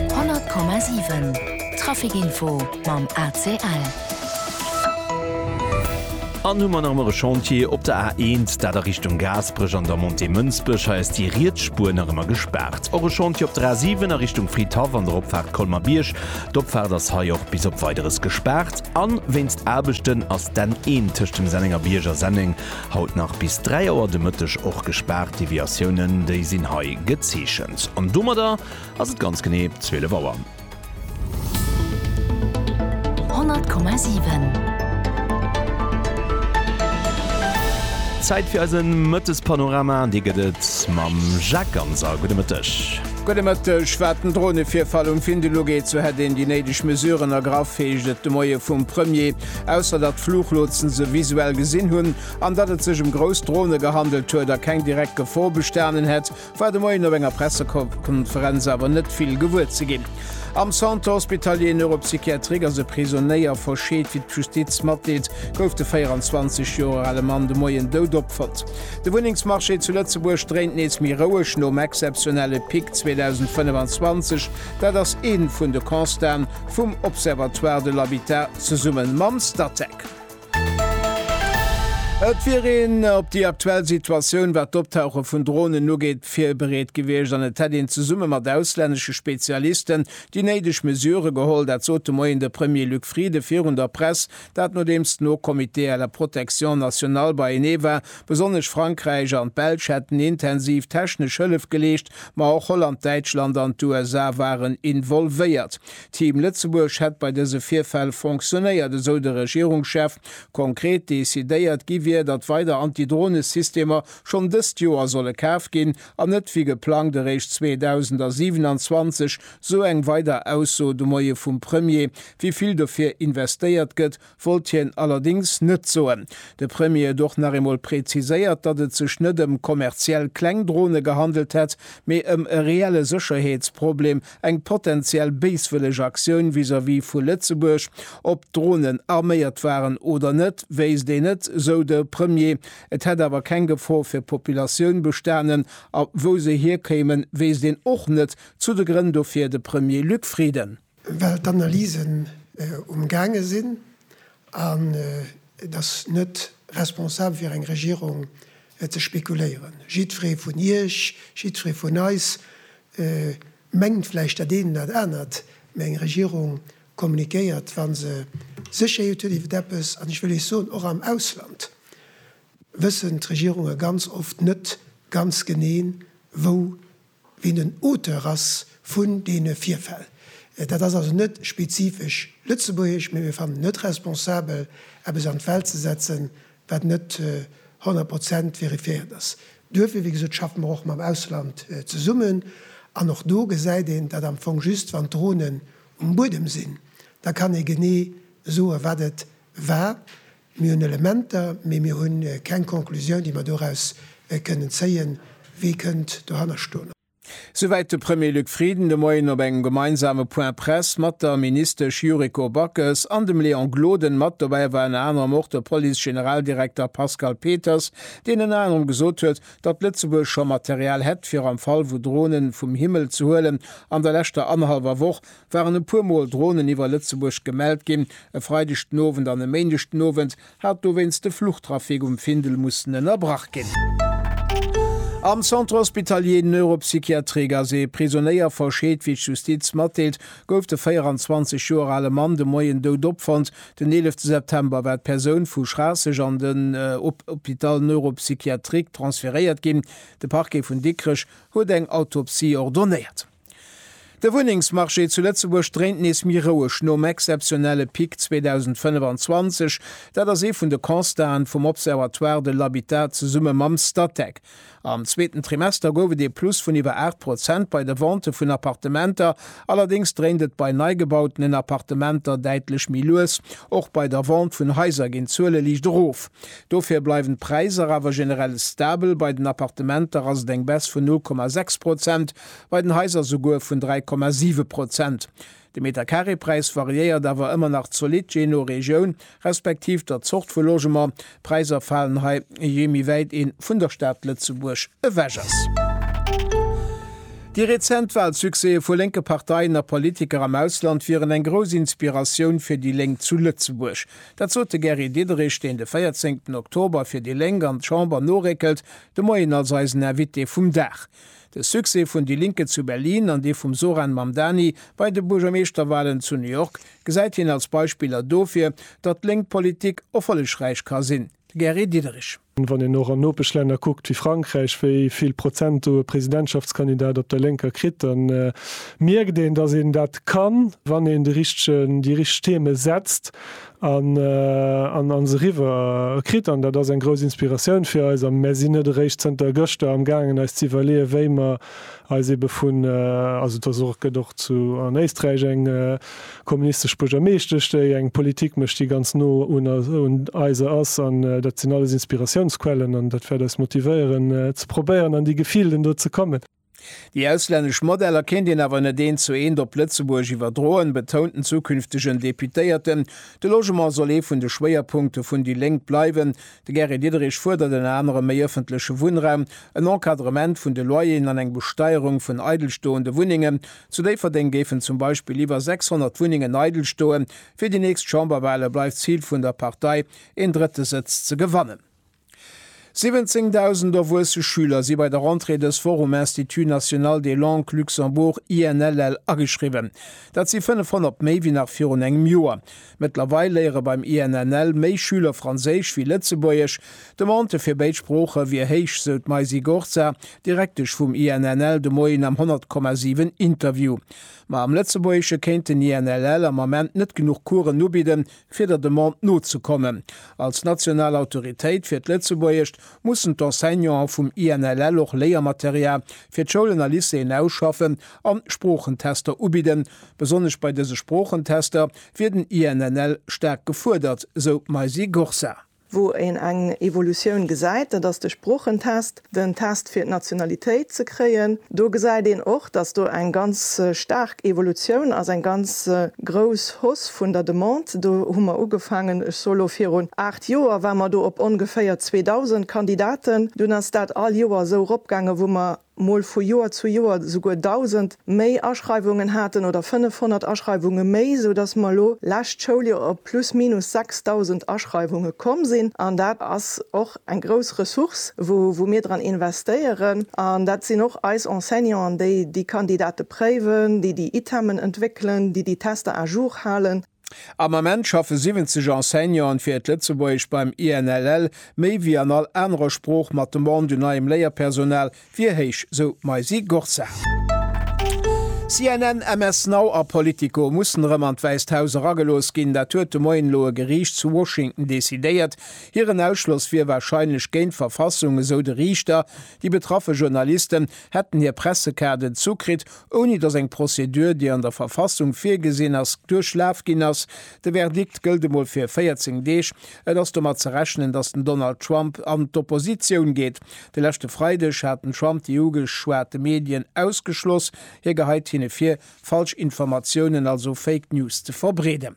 100,7 Trafic Info mam ACL. An hu mer nach emmer e Chantier op der A1, dat a Richtung Gaasperech an der Montée Mënsbech. Hei ass déi riets Spuer nach ëmmer gespaart. Och e Chantier op der A7 a Richtung Fridhaff an der Opfaart Colmer-Bierg. D'Opfaart ass hei och bis op Weideres gespaart. A wéinst Aarbechten ass d'N1 tëscht dem Sennenger Bierg a Senneng Haut nach bis 3 Auer de Mëtteg och gespaart, Deviatiounen déi sinn hei gezeechent. An domadder ass et ganz genee 12 Auer. 100,7. Zäit fir eise Mëttespanorama an dee gëtt et mam Jacques Ganser. Gudde Mëtteg. Gudde Mëtteg. Wat den Dronevirfall um Findel ugeet, sou hätt een déi néideg Mesuren ergraff, heescht et de Moie vum Premier. Ausser datt d'Fluchlotsen se visuell gesinn hunn an datt et sech ëm grouss Drone gehandelt huet a keng direkt Gefor bestanen hätt, war de Moien op enger Pressekonferenz awer net vill gewuer ze ginn. Am Centre hospitalier neuropsychiatrique ass e Prisonéier verscheet. Wéi d'Justiz matdeelt, gouf de 24 Joer ale Mann de Moien dout opfonnt. De Wunnengsmarché zu Lëtzebuerg dréint nees méi roueg. Nom exzeptionelle Pic 2025 Dat ass ee vun de Constaten vum Observatoire de l'habitat zesumme mam Statec. Et wier een op déi aktuell Situatioun, wat d'Optauche vun Dronen ugeet, virbereet gewiescht an et hätt een zesumme mat auslännesche Spezialisten déi néideg Mesurë geholl. Dat sot de Moien de Premier Luc Frieden virun der Press Dat nodeems den Haut Comité à la protection nationale beienee war. Besonnesch Frankräich an d'Belsch hätten intensiv technesch Hëllef geleescht, ma och Holland, Däitschland an d'USA waren involvéiert. Team Lëtzebuerg hätt bei dëse Virfäll fonctionéiert, esou de Regierungschef. Konkret decidéiert gi wier, datt weider Anti-Drone-Systemer schonn dëst Joer solle kaf ginn an net wéi geplangt eréischt 2027 Sou eng weider Ausso de Moie vum Premier. Wéi vill dofir investéiert gëtt, wollt hien allerdéngs net soen. De Premier huet och nach eemol preziséiert, datt et sech net ëm kommerziell kleng Drone gehandelt hätt, mee ëm e reelle Sécherheetsproblem, eng potenziell béiswëlleg Aktioun vis-à-vis vu Lëtzebuerg. Ob d'Dronen arméiert waren oder net, wéisst een net, sou de Premier. Et hätt awer keng Gefor fir d'Populatioun bestanen a wou se hierkéimen, wéisst een och net, Zu de Grënn dofir de Premier Luc Frieden. Well d'Analysen um gaange sinn an et ass net responsabel fir eng Regierung ze spekuléieren. Jiddweree vun Iech, jiddweree vun eis mengt vläicht dat een an dat anert, mä eng Regierung kommunikéiert wa se Sécherheet huet iwwer eppes. An ech wëll Iech soen, och am Ausland wëssen d'Regierunge ganz oft net ganz genee wou wien den Auteur ass vun deene Virfäll. Dat ass also net spezifesch lëtzebuergesch, mee mir fannen et net responsabel, eppes an d'Welt ze setzen, wat net honnert Prozent verifiéiert ass. Duerfir, wéi gesot, schaffe mer och mam Ausland zesummen. An och do gesäit een, datt am Fong just wann d'Dronen um Buedem sinn, da kann ee genee soen, wat et war. Mir hunn Elementer, mee mir hu keng Conclusioun, déi mer doraus kënnen zéien, wie kënnt dohanner stoen. Souwäit de Premier Luc Frieden de Moien op engem gemeinsame Point-presse mat der Ministesch Yuriko Backes an dem Léon Gloden. Mat dobäi war ënner anerem och de Police-Generaldirekter Pascal Peters, deen ënner anerem gesot huet, datt Lëtzebuerg scho Material hätt, fir am Fall wou Dronen vum Himmel ze huelen. An der leschter annerhallwer Woch waren e puer Mol Dronen iwwer Lëtzebuerg gemellt ginn, e Freideg den Owend an e Méindeg den Owend hat dowéinst de Fluchtrafic um Findel mussen ënnerbrach ginn. Am Centre Hospitalier Neuropsychiatrie Gazé, Prisonéier verscheet, Wéi d'Justiz matdeelt, gouf de 24 Joer ale Mann de Moien dout opfonnt. Den 11 September war d'Persoun vu Schraasseg an den Hôpital Neuropsychiatrique transferéiert ginn. De Parquet vun Dikrech huet eng Autopsie ordonéiert. De Wunnengsmarché zu Lëtzebuerg dréint nees méi roueg nom exzeptionelle Pic 2025. Dat ass ee vun de Constaten vum Observatoire de l'habitat zesumme mam Statec. Am zweeten Trimester gouf et ee Plus vun iwwer 8 Prozent bei de Ventë vun Appartementer. Allerdéngs dréint et bei neigebautenen Appartementer däitlech méi lues. Och bei der Vente vun Haiser ginn d'Zuele liicht erof. Dofir bleiwen d'Präisser awer generell stabel. Bei den Appartementer ass et eng Baisse vun 0,6 Prozent. bei den Haiser souguer vun 3,7 Prozent. De Meterkareepräis variéiert awer ëmmer nach zolidd jee no Regioun, respektiv der Zort vu Logement. D'Präiser falen hei jee méi wäit ee vun der Stad Lëtzebuerg ewech ass. Déi rezent Walsuccèse vu lénke Parteien a Politiker am Ausland wieren eng grouss Inspiratioun fir déi Lénk zu Lëtzebuerg. Dat sot de Gary Diderich, deen de véierzéngten Oktober fir déi Lénk an d'Chamber noréckelt, de Moien als eisen Invité vum Dag. De Succès vun Die Linke zu Berlin an dee vum Zohran Mamdani bei de Buergermeeschterwalen zu New York gesäit hien als Beispiller dofir, datt lénk Politik erfollegräich ka sinn. De Gary Diderich. Wann een och an Nopeschlänner kuckt wéi Frankräich, wéi vill Prozent do e Presidentschaftskandidat op der Lénker kritt, da mierkt een, datt een dat kann, wann een de richtegen, déi richteg Theme setzt, An an ons eriwwer kritt. An dat ass eng grouss Inspiratioun fir eis. A mär sinn net eréischt zënter gëschter am gaangen eis ze iwwerleeën, wéi mer eis ebe vun, also et ass och, gëtt och zu an Éisträich eng kommunistesch Buergermeeschtesch, déi eng Politik mécht, déi ganz no un un eiser ass. An dat sinn alles Inspiratiounsquellen an dat wäert eis motivéieren ze probéieren an déi Gefilden do ze kommen. Déi auslännesch Modeller kéint een awer net eent zu eent op Lëtzebuerg iwwerdroen, betount den zukünftegen Deputéierten. De Logement soll ee vun de Schwéierpunkte vun déi Lénk bleiwen. De Gary Diderich fuerdert ënner anerem méi ëffentleche Wunnraum, en Encadrement vun de Loyeren an eng Besteierung vun eidelstoende Wunnengen. Zu Déifferdeng géifen zum Beispill iwwer 600 Wunnengen eidel stoen. Fir déi nächst Chamberwale bleift d'Zil vun der Partei, een drëtte Sëtz ze gewannen. 17.000 erwuesse Schüler si bei der Rentrée dës Woch um Institut national des langues Luxembourg, INLL, ageschriwwen. Dat si 500 méi wéi nach virun engem Joer. Mëttlerweil léiere beim INNL méi Schüler Franséisch wéi Lëtzebuergesch. D'Demande fir béid Sprooche wier héich, sou d'Maisy Gorza, Direktesch vum INNL, de Moien am 100,7 Interview. Ma am Lëtzebuergesche kéint den INLL am Ament net genuch Coursen ubidden, fir der Demande nozekommen. Als national Autoritéit fir d'Lëtzebuergescht mussen d'Enseignanten vum INLL och Léiermaterial fir d'Schoulen a Lycéeën ausschaffen an Sproochentester ubidden. Besonnesch bei dëse Sproochentester wier den INLL staark gefuerdert, sou d'Maisy Gorsar. Wou een eng Evolutioun gesäit, dat ass de Sproochentest, den Test fir d'Nationalitéit ze kréien. Do gesäit een och, datt do eng ganz staark Evolutioun ass, eng ganz grouss Hausse vun der Demande. Do hu mer ugefaangen, ech soe lo virun aacht Joer, war mer do op ongeféier 2.000 Kandidaten. Dunn ass dat all Joer esou eropgaangen, wou mer mol vu Joer zu Joer souguer 1.000 méi Aschreiwungen haten oder 500 Aschreiwunge méi, sou dass mer elo lescht Schouljoer op plus minus 6.000 Aschreiwunge komm sinn. An dat ass och eng grouss Ressource, wou mir dran investéieren. An dat sinn och eis Enseignanten, déi déi Kandidate préiwen, déi déi Itemen entwéckelen, déi déi Tester à jour halen. Am Ament schaffe 70 Enseignanten fir et Lëtzebuergescht beim INLL, méi wéi an all anerer Sprooch. Mat Demande un neiem Léierpersonal wier héich, sou d'Maysie Gorza. CNN, MS Now a Politico mussen erëm an d'Wäisst Haus eragelooss ginn. Dat huet de Moien elo e Geriicht zu Washington decidéiert. Hiren Ausschloss wier warscheinlech géint d'Verfassung, esou de Riichter. Déi betraffe Journalisten hätten hir Pressekaarden zukritt, ouni datt eng Prozedur, déi an der Verfassung virgesinn ass, duerchlaf ginn ass. De Verdikt gëllt emol fir 14 Deeg. Et ass domat ze rechnen, datt den Donald Trump an d'Oppositioun geet. De leschte Freideg hat den Trump déi ugeschwate Medien ausgeschloss. Hie geheit hinne vir, falsch Informatiounen, also Fake News, ze verbreeden.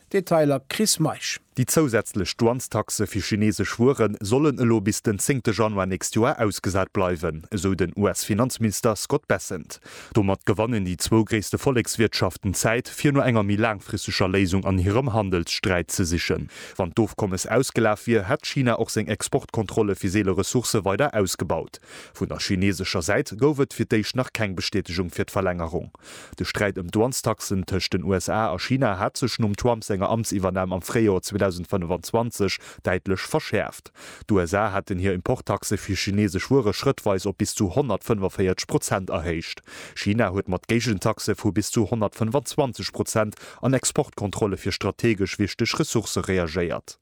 Detailer Chris Meisch. Déi zousätzlech Douanestaxe fir chinesesch Wueren sollen elo bis den zéngte Januar nächst Joer ausgesat bleiwen, esou den US-Finanzminister Scott Bessent. Domat gewannen déi zwou gréisste Vollekswirtschaften Zäit, fir no enger méi laangfristeger Léisung an hirem Handelssträit ze sichen. Wann d'Ofkommes ausgelaf wier, hätt China och seng Exportkontrolle fir seele Ressourcë weider ausgebaut. Vun der chinesescher Säit gouf et fir d'éischt nach keng Bestätegung fir d'Verlängerung. De Sträit ëm d'Douanestaxen tëscht den USA a China hat sech nom Trump senger Amtsiwwernam am Fréijoer 2025 däitlech verschäerft. D'USA haten hir Importtaxe fir chinesesch Wuere schrëttweis op bis zu 145 Prozent erhéicht. China huet mat Géigentaxe vu bis zu 125 Prozent an Exportkontrolle fir strategesch wichteg Ressourcë reagéiert.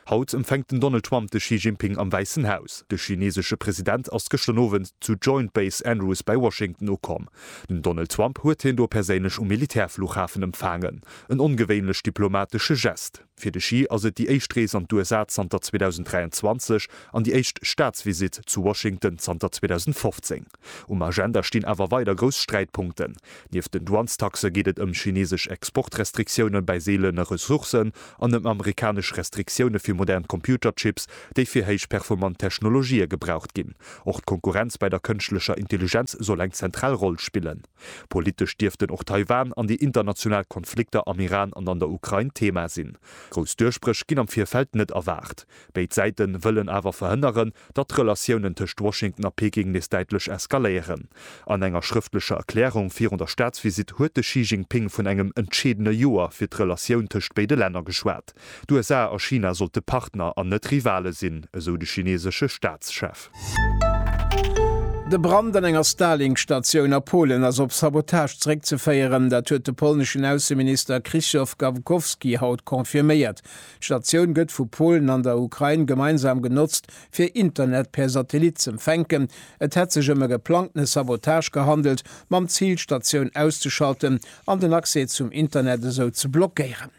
Haut empfänkt den Donald Trump de Xi Jinping am Wäissen Haus. De chineesesche President ass gëschter Owend zu Joint Base Andrews bei Washington ukomm. Den Donald Trump huet hien do perséinlech um Militärfluchhafen empfaangen. En ongewéinlech diplomatesche Gest. Fir de Xi ass et déi éischt Rees an d'USA zanter 2023 an déi éischt Staatsvisitt zu Washington zanter 2015. Um Agenda stinn awer weider grouss Sträitpunkten. Nieft den Douanestaxe geet et ëm chinesesch Exportrestriktioune bei seelene Ressourcen an ëm amerikanesch Restriktioune fir modern Computerchips, déi fir héichperformant Technologië gebraucht ginn. Och d'Konkurrenz bei der kënschtlecher Intelligenz soll eng zentral Roll spillen. Politesch dierften och Taiwan an déi international Konflikter am Iran an an der Ukrain Thema sinn. Grouss Duerchbréch ginn am Virfeld net erwaart. Béid Säiten wëllen awer verhënneren, datt d'Relatiounen tëscht Washington a Peking nees däitlech eskaléieren. An enger schrëftlecher Erklärung virun der Staatsvisitt huet de Xi Jinping vun engem entscheedene Joer fir d'Relatioun tëscht béide Länner geschwat. D'USA a China sollte Partner an net Rivale sinn, esou de chineesesche Staatschef. De Brand an enger Starlink-Statioun a Polen ass op Sabotage zeréckzeféieren. Dat huet de polneschen Ausseminister Krzysztof Gawkowski haut confirméiert. D'Statioun gëtt vu Polen an der Ukrain gemeinsam genotzt, fir Internet per Satellit z'empfänken. Et hätt sech ëm e geplangtene Sabotage gehandelt, mam Zil d'Statioun auszeschalten an den Accès zum Internet esou ze blockéieren.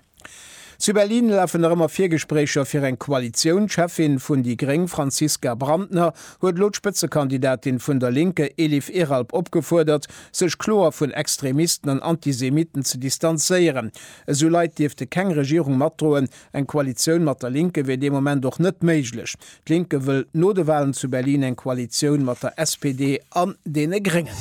Zu Berlin lafen nach ëmmer Virgespréicher fir eng Koalitioun. D'Cheffin vun déi gréng Franziska Brantner huet elo d'Spëtzekandidatin vun der Linke Elif Eralp opgefuerdert, sech kloer vun Extremisten an Antisemiten ze distanzéieren. Esou Leit dierfte keng Regierung matdroen. Eng Koalitioun mat der Linke wier dee Moment och net méiglech. D'Linke wëll no de Walen zu Berlin eng Koalitioun mat der SPD an deene Gréngen.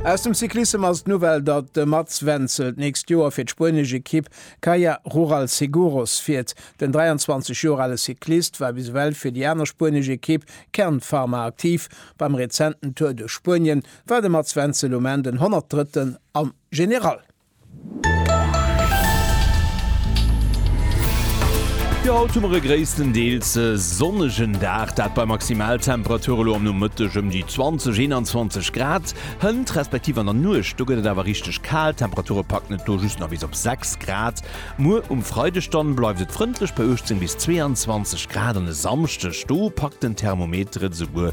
Aus dem Cyclissem ass d'Nouvelle, datt de Mats Wenzel d'nächst Joer fir d'spuenesch Ekipp Caja Rural Seguros fiert. Den 23 Joer ale Cyclist war bis ewell fir déi aner spuenesch Ekipp Kern Pharma aktiv. Beim rezenten Tour duerch Spuenien war de Mats Wenzel um Enn den 103. am General. Jo, haut hu mer e gréisstendeels sonnegen Dag, dat bei Maximaltemperature lo am Nomëtteg ëm déi 20, 21 Grad. Hënt, respektiv an der Nuecht, do gëtt et awer richteg kal, d'Temperature packen et do just nach bis op 6 Grad. Muer um Freideg dann bleift et frëndlech bei 18 bis 22 Grad an e Samschdeg, do packt den Thermometer et esouguer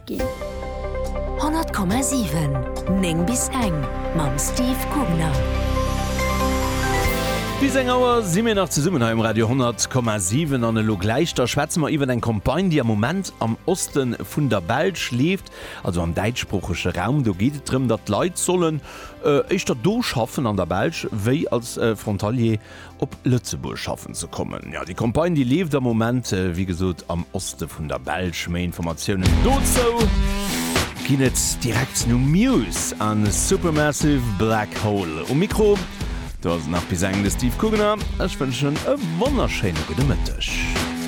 Ginn. 100,7, 9 bis eng mam Steve Gubner. Bis eng Auer si mir nach zesummen hei um Radio 100,7 an elo gläich da schwätze mer iwwer eng Campagne, déi am Moment am Oste vun der Belsch leeft, also am däitschsproochege Raum. Do geet et drëm, datt d'Leit sollen éischter do schaffen an der Belsch wéi als Frontalier op Lëtzebuerg schaffen ze kommen. Jo, déi Campagne, déi leeft am Moment, wéi gesot, am Oste vun der Belsch. Méi Informatiounen dozou. Ginn et direkt no Muse a Supermassive Black Hole. Um Mikro do ass et nach bis eng de Steve Kugener. Ech wënschen e wonnerschéine gudde Mëtteg.